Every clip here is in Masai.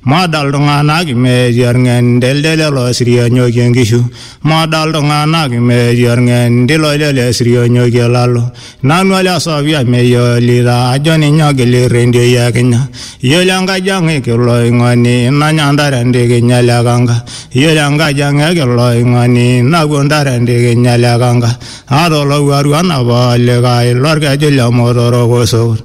Moda iltung'anak imeeti orng'endelde lelo sirionyoki enkishu, moda iltung'anak imeeti orng'endi loilele sirionyoki olalo. Nanu ole Sofia meyiolita ajo ninye ogil irrendioi e Kenya. Iyiolo enkaji ang e Kiloing'oni nanya intare entikinya ele kanka. Iyiolo enkaji ang e Kiloing'oni napuo intare entikinya ele kanka. Aata olowuaru onapa olikae lorkeju le Motorok Osokut.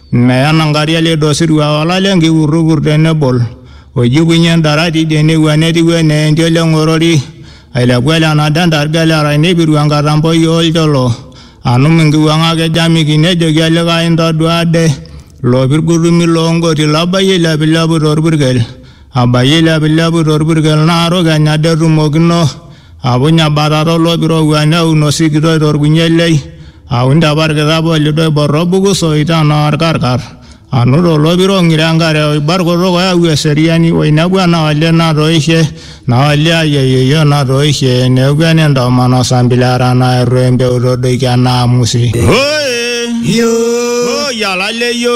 Meya Nankaria lido osirua olale nkipurrupur tenebol, oijukunye endarati idie newua netiu enaa entiol eng'orori, ailepu ele nado endarga ele arai neipiru enkatamboi oo lcholo, anum nkiwuang'ak e Jamiki nejoki olikae intoduaa ade, ilo pirgutumi loo ngoti labayie eilepilepu to lpurkel. Abayie ilepilepu to lpurkel naa rukeny ade etumokino, apuny abatata o loip oirowua neun osikitoi to lkunyie lei, aun te parkitap o lido oibor o buku soi te naa olkarkar, anut o lopiro ng'iro enkare o ibar kutuk oyau eseriani, o inepu ena olee natoishe, naa olee ai o yeyio natoishe, neeku ene ntomonok o sambili era naa eitu empeu to doiki e naamusi. Hooee! Hoooi! Alaleio!